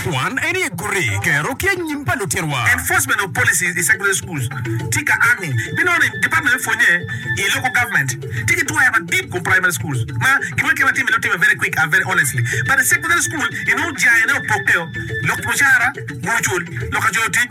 Kwan en ye guti kero ki anyim pa lutitwa. Enforcement of policies in secondary schools tye ka a ni binono ni department me pwonye i local government tye ki twero madit kom primary schools ma gin ma kema time time very quick and very honestly but i secondary school inongo jayene opokke o lok mucara, mono cul, lok ka coyo tic,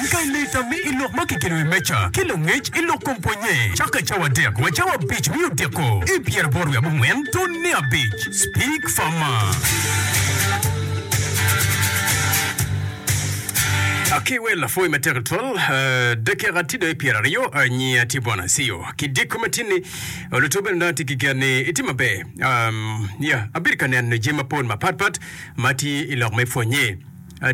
Pi lita mi i lok ma kikelo i meja ki langec i lok kom pwonye cako i cawa adek wa cawa abic mi odiko i pyeraboro wiye abongwen tun me abic. Speak Farmer. Ki wel lapwony matek tutwal, dakika tye dong i pyeraryo. Nyinga tye Bwana Acio. Ki diko matin ni, luto bene dong atye ki gen ni itye maber. Um, ya, abedo ka neno jami mapol mapatpat ma tye i lok me pwonye.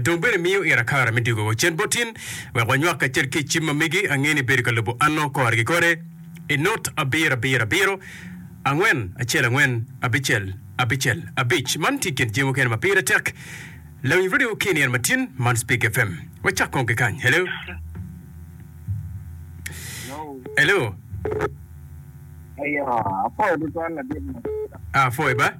Dong bene imiyo ira kare me diko wa cen bot in, wek wanywak kacel ki i cim ma megi. Angeyo ni ibedo ka lubo anno kore ki kore. I nut abiro, abiro, abiro, angwen, acel, angwen, abicel, abicel, abic. Man tye i kin jami mukene ma pire tek lawiny radio ki i nino matin man. Speak FM. Wacak kong ki kany. Hello? Hello? Aye, apwoyo tutwal ladit ma. Apwoyo ba.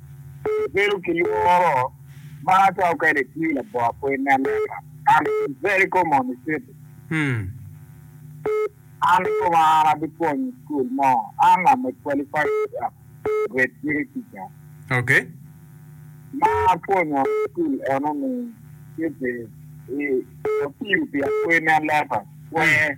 Abedo ki lworo ma atwero kwede tii labongo pwony me Leba. I'm in very common city. An koma an abipwonyo i school mo. An I'm a qualified teacher, grade three teacher. Okay. Ma apwonyo i school eno ni city i Opiro pi apwony me Leba. Wee.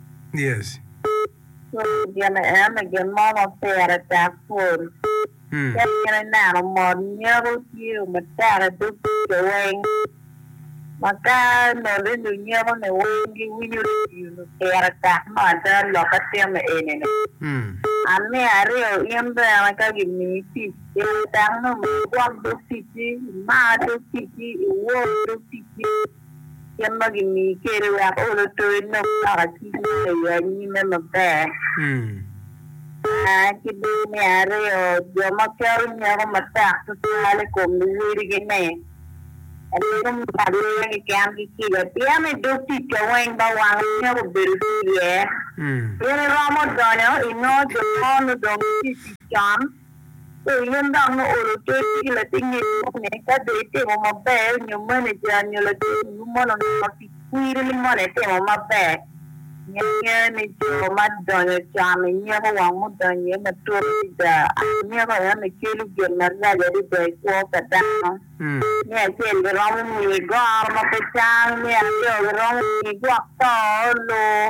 Cwiny gin ene gin mo ma pire tek pol. Ka in ineno mot nyeto tiyo matek i dog kica weng, ma ka noli lunyeto-ni weng giwinyo tiyo-nu pire tek me ada lok itimo eni-ni. Amiya aryo in bene ka gimiyi tic, pire tek ni omyero igwok dog ticci, imar dog ticci, iwor dog ticci. kit ma gimiyi kwede wek ol oto inong loko cwiny ma i anyime maber. Ki dong me aryo, jo ma keto nyeko matek tutwal i kom luwodigi-ni, abedo me marogi keken ki kica, pien i dog tic ca weng ba wang nyeko bedo tye iye. In iromo donyo inongo jo mo nudong gitye i tic con. Pe iyen dok me olo ter ki latingi bot ni ka dong itimo maber nyo maneja nyo latingu mono onongo pi kwiri ni mono itimo maber. Nge ni jo ma donyo can onyeko wang mudonyo iye matut adada. Anyeko eno kelo gin marac adada i kwo pa dano. Me acel giromo miyi goro ma pe cang, me aryo giromo miyi gwok to, lur.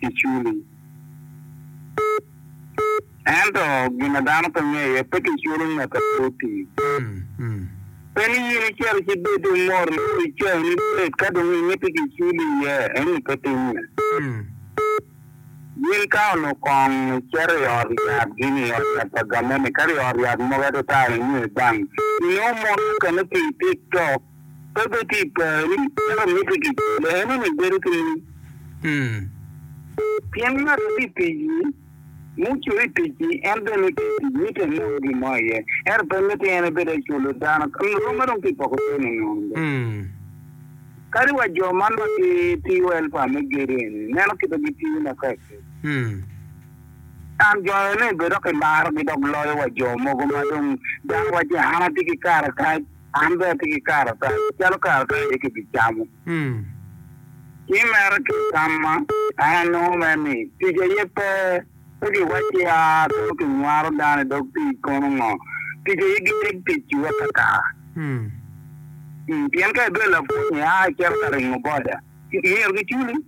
kiculi. Ento gin ma dano pe ngeyo aye pe kiculo ngat a pe otii. Pe ni in icito ci bed dong mot ni o icayi ni bed ka dong imiti kiculi iye ento pe timme. Gin ka onongo kong icito i ot yat gin i ot yat pa gamente kadi i ot yat mogo atata inge bank inongo mon mukene otii tik tok pe bed tye i poni, ento me tic i lehenani bedo keni. Pien ngat ma tye i tic-ci, mucwere i tic-ci, en bene nongo tye i tic, mitte enong gin mo iye, ento pe mitte en ebed aculo dano, romme dong tye i poko cente nono bene. Kadi wa jo man ma gitiyo elpa me gedo eni, ineno kit ma gitiyo makekki. An jo eni bene dok kimarogi dok loyo wa jo mogo ma dong dano wacci an atye ki kare kac. An bene atye ki karatac calo karatac aye kibicamo. Ci mere kitamma, an anongo mere ni tic aye pe, pe giwacci a kono kinywaro dano i dog pii kono ngo. Tic aye giteg tic i wek ata. Pien ka ibedo lapwony, ia icito ka ringo boda, myero giculi.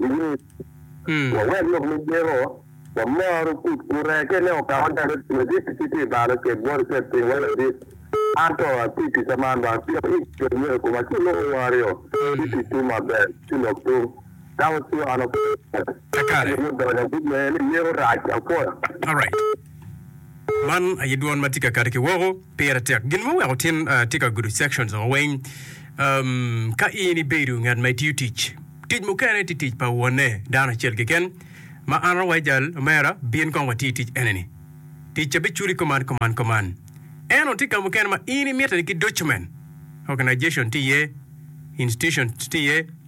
Luwil, wawek lok me Jehovah wamor ogut gure ki ne okawa calo ladit ci tye balo cel bot cel piny wa ladit. An to atye i kica man ba pien i kin myero koma ci loko wa aryo ci tic tung maber ci lok tung ka waciyo an apwoyo. Pi donyo agut me en ni yeko rac apwoyo. Man aye dwon ma tye ka kati ki woko, pire tek. Gin muweko tin uh, tye ka gudo sections o weng. Um, ka in ibedo ngat ma itiyo tic, tic mukene tye tic pa wonne dano acel keken. Ma an awaco jal, omera, bin kong wati i tic eneni. Tic ca biculi kuman, kuman, kuman. Eno tye ka mukene ma in imite ni ki document, organization tye iye, institution tye iye,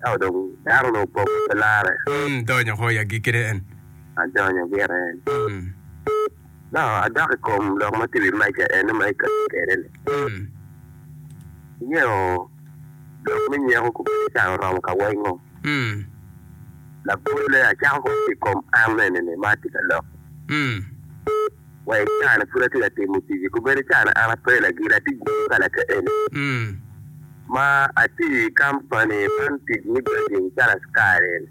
Ka odong dano onongo opoko pe larre. Mm, donyo ko i agikki ne en. Adonyo gire en. Mm. No, adok i kom lok ma tye i wi meja eno ma ikati kwede-ni. Mm. Ingeyo lok me nyeko kobedi can oromo ka wengo. Mm. Labolle, acako kong ki i kom an eni-ni ma atye ka lok. Mm. wa i caa-ni pud atye ka timo tic-ci, kobedi i caa-ni an ape lagit, atye gudo ka lakaeni ma atiyo i kampani man tic me grading calo askari-ni.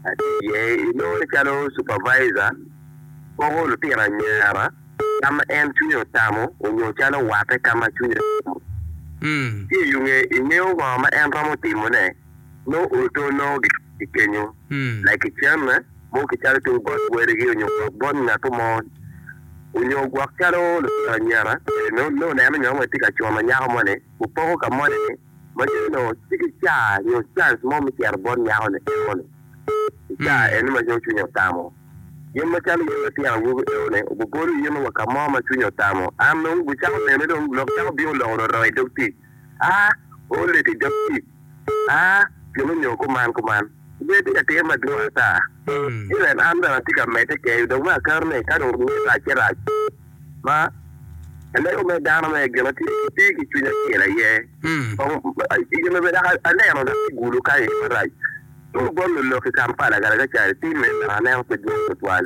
Atiyo iye, inongo ni calo cupavaica, poko lutino anyira ka ma en cwinye otamo nyo calo watte ka ma cwinye otamo. Ci ingeyo ngo ma en romo timone? Mo oto nongo gikenyo lagicen mo ki calo tung bot kwerigi onyo gwok bot ngat mo onyo gwok calo lutino anyira. Nongo oneno nyo wai tye ka cuno nyako moni opoko ka moni-ni ma dong nongo tye ki ca nyo cance mo me cito bot nyako-ni enoni i ca eni ma nongo cwinye otamo. Gin macalo in latin awobi enoni obibolo in wa ka mo ma cwinyi otamo. An nongo gucako nene dong lok cako bino loko roro idog tic. a olle ki Jacip, a gin onyo kuman kuman. Ger tye ka timo madwong ata. Elen an bene atye ka medde keyo dong me akato ni ka dong rwod rac ci rac ma alego me dano me gina tye tye ki cwiny acel aye. Kong gin obedo yaka aneno dok ki gulu kany aye marac. Tung bot lulok i Kampala kare ka cani tim meno dok aneno pe dwong tutwal.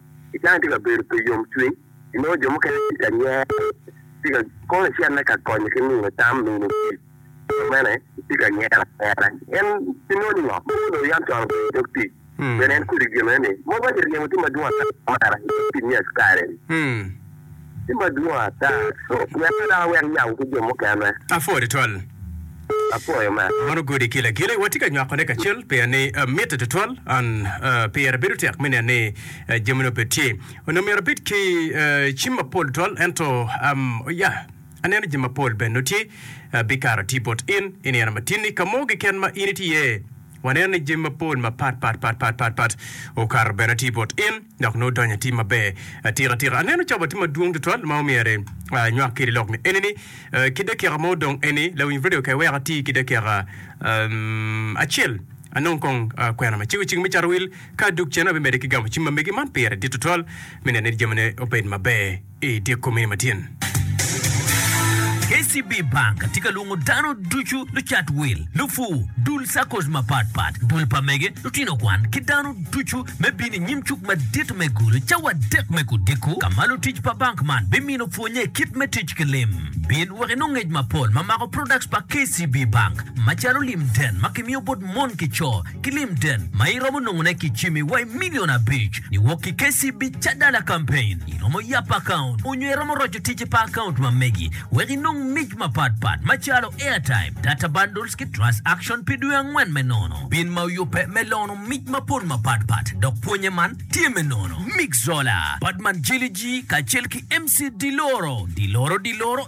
I kare ma itye ka bedo pi yomcwiny, inongo jo mukene tye ka nyero, itye ka kono icenne ka konyo ki miyo tam, miyo tic, ki dok bene itye ka nyero anyera. En pingo ni ngat mo onongo yam cwalo bedo i dog tic? Pien en kodi gire ni, 'Mogo aye ryemo tye madwong ata ma amarra i dog tic me askari-ni? Tye madwong ata. Myero ka dano wek yam ki jo mukene. Apwoyo tutwal. Apwoyo me. Mono gudi kila kila watye ka nywakone kacel pien ni mitte tutwal and pire bedo tek me neno ni jamine obed tye. Onongo myero abed ki cim mapol tutwal ento ya aneno jami mapol bene nongo tye bikato atii bot in i nino matinni ka mo keken ma in itye iye waneno ni jami mapol mapat pat pat pat pat pat okato bene atii bot in. dok nongo donyo i tim maber atika tika. Aneno cobo tye madwong tutwal ma omyere anywak kede lok ni eni ni ki dakika mo dong eni lawiny radio ka iweka ati ki dakika acel anong kong kwena ma cego cing me cato wil ka duk cen abimede ki gamo cim ma megi man pire dit tutwal me nene ni jamine obed maber. I dyekko mene matyen, KCB Bank tye ka lwongo dano ducu, lucat wil, lupur, dul saccos mapat pat, dul pa mege, lutino kwan, ki dano ducu me bino i nyim cuk madit me Gulu cawa adek me odiko, ka ma lutic pa bank man bimino pwonye kit me tic ki lim. Bin wek inong ngec mapol ma mako products pa KCB Bank, macalo lim den ma kimiyo bot mon ki co, ki Limden ma iromo nongone ki jami wa i milion abic niwok ki KCB Cadala Campaign. Iromo yap akaunt onyo iromo roco ticce pa akaunt ma megi wek inong mic mapat pat macalo airtime, data bundles ki trust action pi dwe angwen me nono. Bin ma oyubbe me lono mic mapol mapat pat dok pwonye man tye me nono. Mick Zola, Badman Jiliji kacel ki MC Diloro, Diloro Diloro.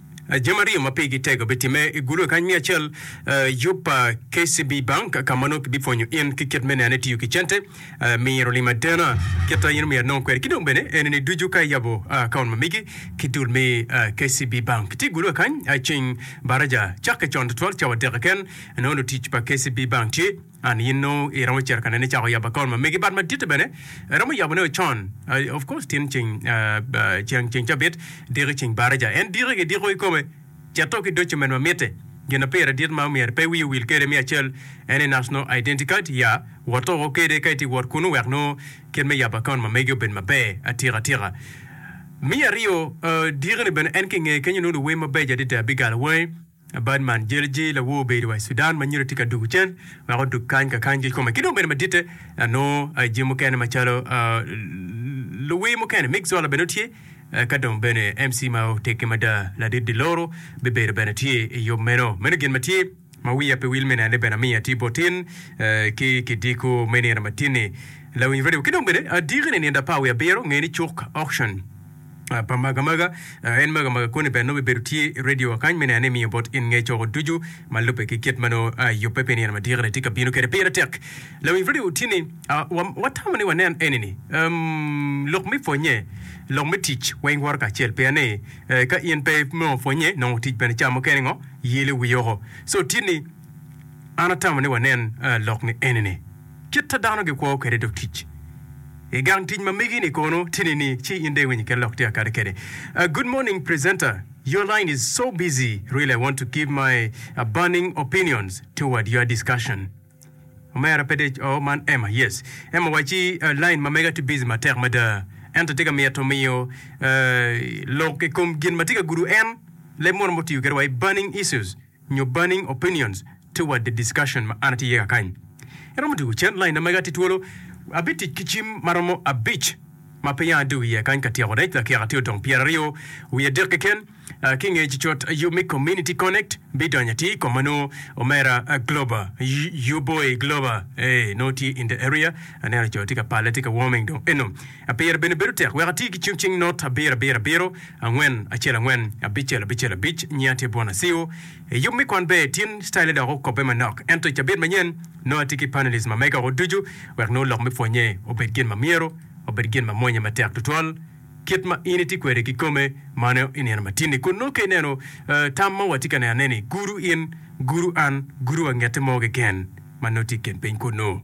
Jami aryo ma pigi tego bitimme i gulu kany me acel, yub pa KCB Bank ka ma nongo kibipwonyo in ki kit me neno itiyo ki cente, miro lim adena kit ma in omyero inong kwede, ki dong bene enini ducu ka iyabo akaont ma migi ki dul me KCB Bank. Tye gulu kany ceng baraja cakke con tutwal cawa dek keken nongo lutic pa KCB Bank tye. An yin nongo i romo cito ka nene cako yabo account ma megi but maditte bene I romo yabo ne o con I of course tin ceng ceng ceng cabit diki ceng baraja en diki ki diko ikome ceto ki document ma mitte gina pire dit ma omyero pe wiyi owil kede me acel ene nasno identity card ya woto woko kede ka iti wot kunu wek nongo kit me yabo account ma megi obed maber atika atika me aryo diki ni bene en ki nge kenyo nongo luwem mabeco adada bigal weng. Badman Jelji, lawor obedo wa i Sudan ma nyira tye ka dugu cen wek odug kany ka kany gil kome ki dong bene maditte nongo jami mukene macalo luwir mukene. Mick Zola bene tye ka dong bene MC ma oteggi mada ladit Diloro bibedo bene tye i yub meno. Meno gin ma tye ma wiya pe wil me nene bene amiya ti bot in ki kidiko me nino matinni. Lawiny Radio ki dong bene adiki ni Nindo Apar wiye Abiro ngeni cuk auction. pa magamaga en magamaga koni bene nongo bibedo tye i radio wa kany me neno ni emiyo bot in nge coko ducu ma lubbe ki kit ma nongo yubbe pi nino madiko ni tye ka bino kwede pire tek lawinj radio wutye ni watamo ni wanen eni ni lok me pwonye lok me tic weng woro kacel pien ni ka in pe me pwonye nongo tic bene ca mukene ngo yelo wi oko so tye ni an atamo ni wanen lok ni eni ni Kit-ta dano gikwo kwede dog tic. I gang tic ma megi-ni kono tye nini ci in dong iwinyo kit lok tika kadi kede? Good morning presenter, your line is so busy really I want to give my burning opinions toward your discussion. Omera pe dec oh man Emma yes Emma waci line ma mega tye busy matek mada ento tye ka mito miyo lok i kom gin ma tye ka gudo en leb mono ma otiyo kwede wa i burning issues. nyo burning opinions toward the discussion ma an atye iye kakany. Iromo dwogo cen lain na mega tye twolo? Abitic ki cim ma romo abic ma pe yanga dwogo iye kany ka tyeko rec lakika tye odong pyeraryo wiye adek keken. Ki nge cot yub me Community Connect bidonyo atir kom ma nongo Omera Glober, Your Boy Glober, ee nongo tye in the area. Aneno co tye ka palle tye ka warming dong eno. Apire bene bedo tek wek ati ki cung cing not abiro abiro abiro, angwen acel angwen, abicel abicel abic. Nyinga tye Bwon Asiu. I yub me kwan ber tin citaile dok okobbe manok. Ento i cabit manyen, nongo ati ki panelis ma mega woko ducu wek nongo lok me pwonnye obed gin ma myero obed gin ma mwonye matek tutwal kit ma in itye kwede kikome mano i nino matin-ni. Kun nongo ka ineno tam ma watye ka nenone-ni, gudu in, gudu an, gudu wa ngette mo keken ma nongo tye i kin piny kunnu.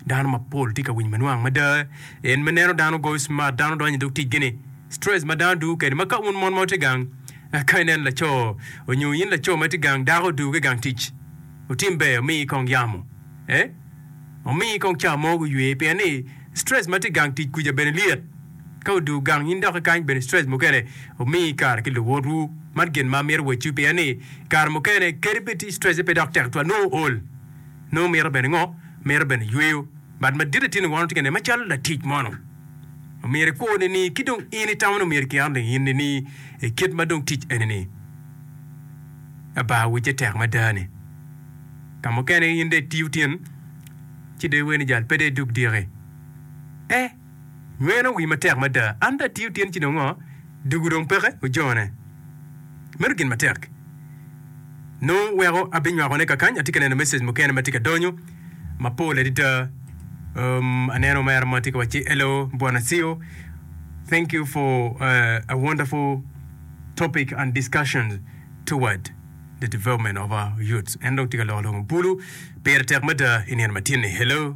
Dano mapol tye ka winyo manwang mada en me neno dano goyo cimat, dano donyo idog ticgi-ni, stress ma dano dugo kwede. Ma ka wun mon ma wutye gang, ka ineno laco onyo in laco ma itye gang, dako oduge i gang tic, otim ber omiyi kong yamo, eh, omiyi kong ca mo guywe pien ni stress ma tye i gang tic kuca bene lyet. Ka odugo gang in dok ikany bene stress mukene omiyi kare ki luwotwu. Man gin ma amito wacciwu pien ni kare mukene kadi bed stress-e pe dok tek tutwal, nongo ool. Nongo mito bene ngo? Mito bene yweyo. Bat madit atir ni wano tye ka nene macalo latic mono. Omyero ikwo nini ki dong in itamo ni omyero ikiano ni in nini i kit ma dong tic eni ni Aba wicce tek mada ni. Ka mukene in dong itiyo tin ci dong iweri ni jal pe dong idug diki. E. Meno wi matek mada. An dong atiyo tyen ci dong ngo? Dugu dong peke ojone. Meno gin matek. Nongo weko abinywako ne kakany, atye ka neno message mukene matye ka donyo mapol adada. Um, aneno omera mo tye ka wacci, Hello Bwana Ceo, thank you for a wonderful topic and discussion toward the development of our youths. En dong tye ka loko lok mabulu. Pire tek mada i nino matyen-ni. Hello.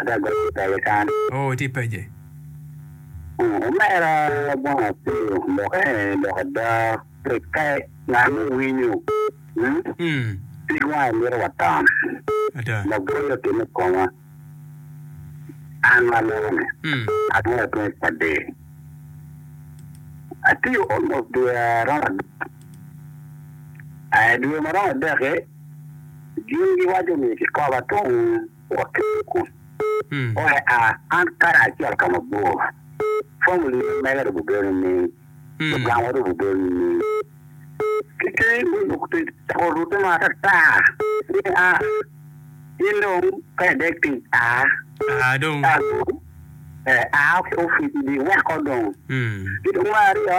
Ada gong ki pece kan. Oo itye pece. Oo omera bong apeyo loke lok ada pek ka ngat mo winyo hmm pig wange mito wa tam Ada. Labwor otimme i koma an ma aloko ni Hmm. atwero atweng i padi atiyo almost dwe aromo adek I dwe ma romo adek-ki gin giwaco ni kikoba tung. waketo kun oe a an kare acel ka mabor. Famili ma mega dong bibino nining? Lugangwa dong bibino nining? Ki keni dong lok tic ocako rute ma atata ni a in dong ka idek tic a Aa dong. a dong, ee, a ki opic idi weko dong. Ki dong me aryo,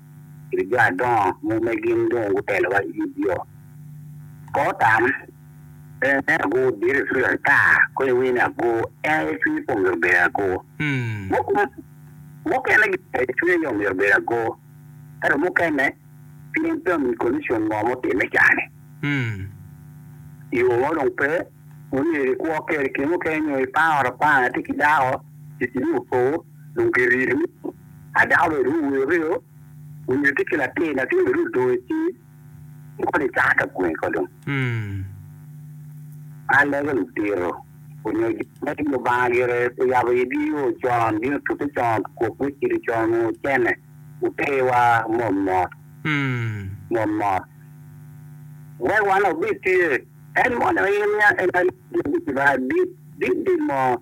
ki jo adongo mo ma gin dong gutelowa i Gibeon. Ka otam, pe ineno ago diro i cwiny ata, kono iwinyo ni ago en aye cwinye pe omyero obed ago. Mukene gin aye cwinye aye omyero obed ago, ento mukene pien pe omiyi konicon mo ma otimme i kare-ni, yo mo dong pe, myero ikwo kwede. Kine mukene nyo iparo apara, itye ki dako, ticini opo, dong kirimi. A dako me Ruu wi oriyo onyo tye ki latin, latin me Ruu odong i ci koni i caka ka gwe ko dong. A lege ludito onyo jo me i Lubanga gire oyabo i gi yo con, gin otute con, kok gucido con onyo ocene otewa mot mot mot mot wek wan obed tye en mono in nia en nia dit dit mo.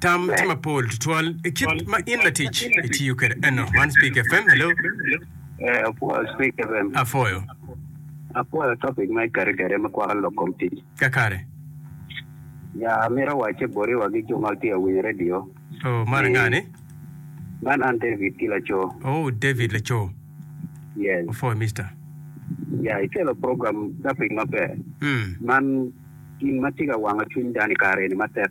Tam tye mapol tutwal i kit ma in latic itiyo kwede eno. Man Speak FM, hello. Eh, apwoyo Speak FM. Apwoyo. Apwoyo topic ma ikare kwede me kwako lok kom tic. Kakare. Ya, amito wacce boti wa ki jo ma tye awinyo radio. Oh, mara nga ni? Man an David ki laco. Oh, David laco. Yes. Apwoyo, Mister. Ya, ikelo program topic maber. Mm. Man gin ma tye ka wango cwiny dano i kare ni matek.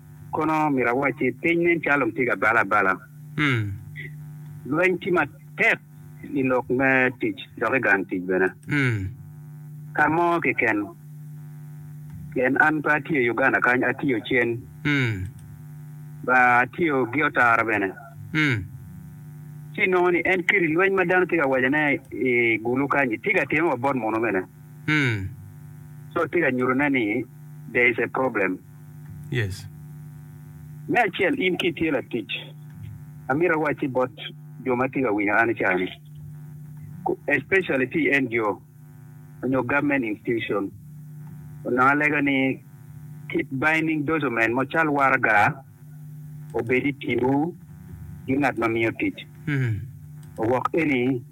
Kono myero awac ni piny nen calo dong tye ka bale abala. Lweny tye matek i lok me tic dok i gang tic bene. Ka mo keken, pien an pe atye i Uganda kany, atye Ocen, ba atye Ogiotara bene, ci inongo ni en kit lweny ma dano tye ka wacone i Gulu kany-nyi tye ka timme wa bot munu bene. So tye ka nyutone ni there is a problem. Yes. Me acel, in ka itye latic, amito awacci bot jo ma tye ka winyo an i cawa ni, especially ki i NGO onyo government institution, onongo alega ni keep binding document mo cal waraga obed i timwu ki ngat ma miyo tic, owok eni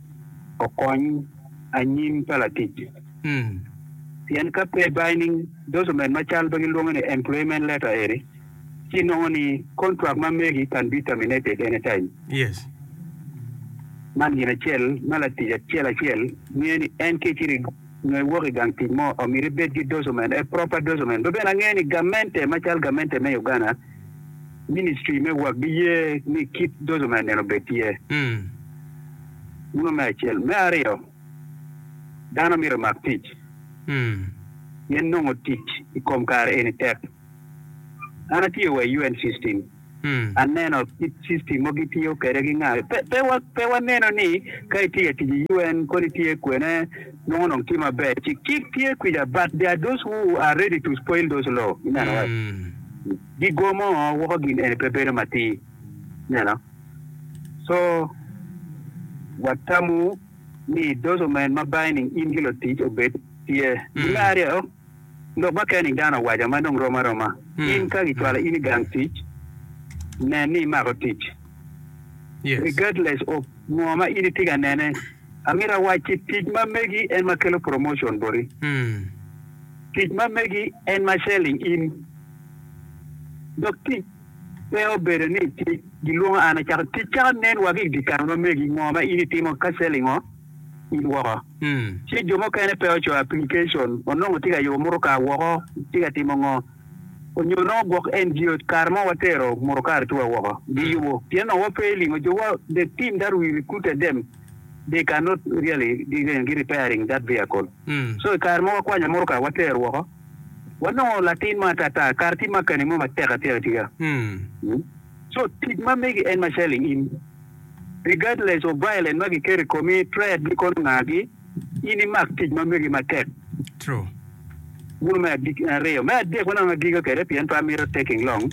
okony anyim pa latic. Pien ka pe binding document ma cal pe gilwonge ni employment letter eri, ci nongo ni contract ma megi can be terminated anytime. Man gin acel ma latic acel acel ngeyo ni en ka icido nyo iwok igang tic mo omyero ibed ki document, a proper document. Be bene angeyo ni gamente macal gamente me Uganda, ministry me work giye ni kit document eni obed tye. Muno me acel. Me aryo. Dano myero omak tic pien nongo tic i kom kare eni tek. An atiyo wa i UN system, aneno kit system mogo gitiyo kwede ki nga. Pe, pe, wa, pe waneno ni ka itiyo i tic i UN kodi itye kwene nongo dong tye maber. Ci kit tye kwija but there are those who are ready to spoil those law. Ineno? Gigomo woko gin eni pe bedo matir. Ineno? Co, watamo ni idoco men ma bangi nining in ki lutic obed tye? I me aryo, lok ma keni dano awaca ma dong rom aroma. In ka kicwalo in i gang tic, nen ni imako tic. Regardless of ngo ma in itye ka nene, amito awac ki tic ma megi en ma kelo promotion boti. Tic ma megi en ma selling in. Dok tic Pe obedo ni tye gilwonga an acako tic caka nen wa ki di kare ma megi ngo ma in itimo ka cell ingo in woko ci jo mukene pe ocoyo application onongo tye ka yubo mutoka woko tye ka timo ngo onyo onongo gwok NGO kare mo wa tero mutoka atu wa woko gi yubo pien onongo wa pe ilingo jo wa the team that we recruited them they cannot really gi repairing that vehicle so ikare mo wa kwanyo mutoka wa tero woko. Wanongo latin mo atata, kara tye makani mo matek atika tika. So tic ma megi en macalo i in, regardless of violence ma giketo i komi, threat me kono ngagi, in imak tic ma megi matek. Guno me aryo. Me adek ma dong agiga kwede pien pe amito taking long,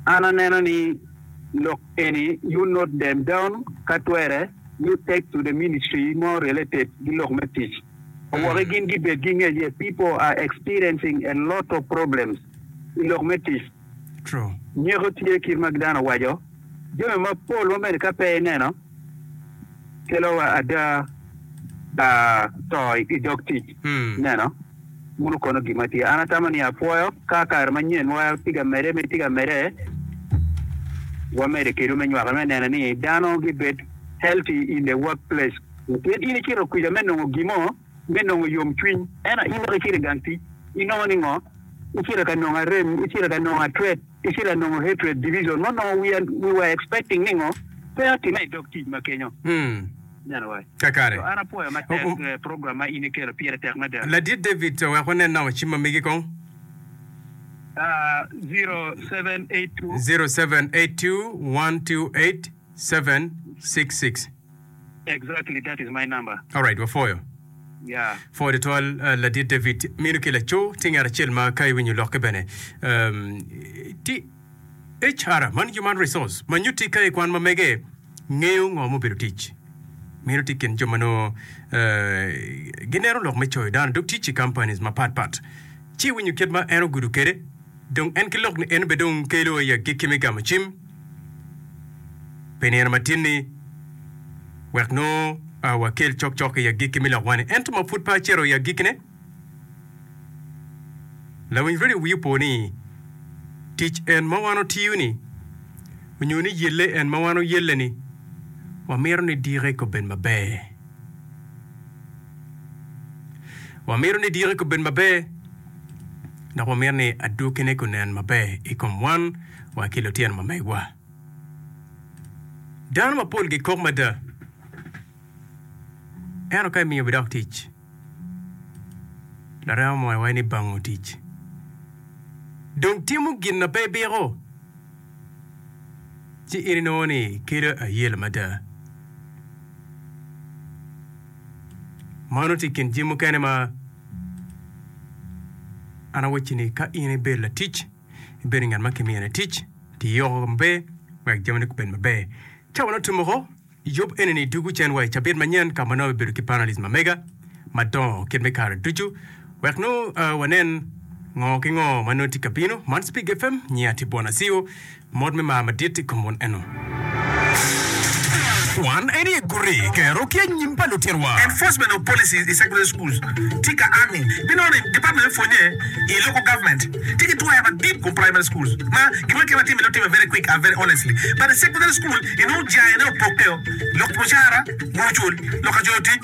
an aneno ni lok eni you note them down ka twere you take to the ministry mo related ki lok me tic. Owoke gin gibed ki ngec ye People are experiencing a lot of problems i lok me tic. Nyeko tye kit ma dano waco jami mapol ma bene ka pe ineno kelo ada to i dog tic. Neno wunu kono gin ma tye. An atamo ni apwoyo ka kare manyen wa tye ka medde me tye ka medde wamede kedwu me nywako me neno ni dano gibed healthy in the work place. Nikech in icito kwija me nongo gin mo, me nongo yomcwiny, ento in dok icito i gang tic, inongo ni ngo? Icito ka nongo arem, icito ka nongo atret, icito ka nongo hatred, division, ma onongo we are, we were expecting ni ngo? Pe atime i dog tic ma kenyo. Ineno wa? Kakare. So, an apwoyo matek O- eh, program ma in ikelo, pire tek mada. Ladit David, wek wanen nongo cim ma megi kong. Ah, 0782. 0782 128 766. Exactly that is my number. Alright wapwoyo. Yeah. Pwoyo tutwal uh, ladit David minu ki laco tye ngat acel ma ka iwinyo lokke bene um, ti HR man human resource ma nyutti ka ikwan ma mege ngeyo ngo ma obedo tic minu ti kin jo ma nongo uh, gineno lok me coyo dano dok tic i companies mapat pat ci iwinyo kit ma en ogudo kede Dong en ki lok ni en be dong kelo i agikki me gamo cim pi nino matin-ni wek nongo wakel cokcok i agikki me lokwa-ni. Ento ma pud pe acito i agikkine, lawinyre-ni wiye opo ni tic en ma wan otiyo-ni nyo ni yelle en ma wan oyelle-ni wamito ni dikke obed maber. Wamito ni dikke obed maber dok wamito ni adwogine gunen maber i kom wan wa ki lutino ma megwa. Dano mapol gikok mada, ento ka imiyo bidok tic, larema moya waco ni bango tic. Dong timo gin ma pe ibiko, ci in inongo ni kelo ayela mada. Mano tye i kin jami mukene ma an awacci ni ka in ibedo latic, ibedo ngat ma kimiyo ni tic, ti yoko maber wek jamine gubed maber. Ca ma nongo tye moko, yub enini dwogo cen wa i cabit manyen ka ma nongo bibedo ki panelist ma mega madongo kit me kare ducu wek nongo ah, wanen ngo ki ngo ma nongo tye ka bino. Man Cipig FM, nyinga tye Bwana Ceo, Mot me mar madit i kom mon eno. Kwan en aye guti kero ki anyim pa lutinowa. Enforcement of policies i secular schools tika army binono ni department me pwonye i local government tye ki twaya madit kom primary schools ma gin ma kit ma timine otime very quick and very honestly but i secular school inongo jaine opokke o lok mucara gucul lok ka coyo tic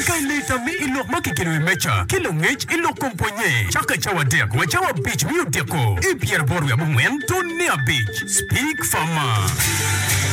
Ka ileta mi i lok ma kikelo iwi meja ki langec i lok kom pwonye, cak ka cawa adek wa cawa abic me odiko i pyeraboro wiye abongwen tun me abic. Speak for more.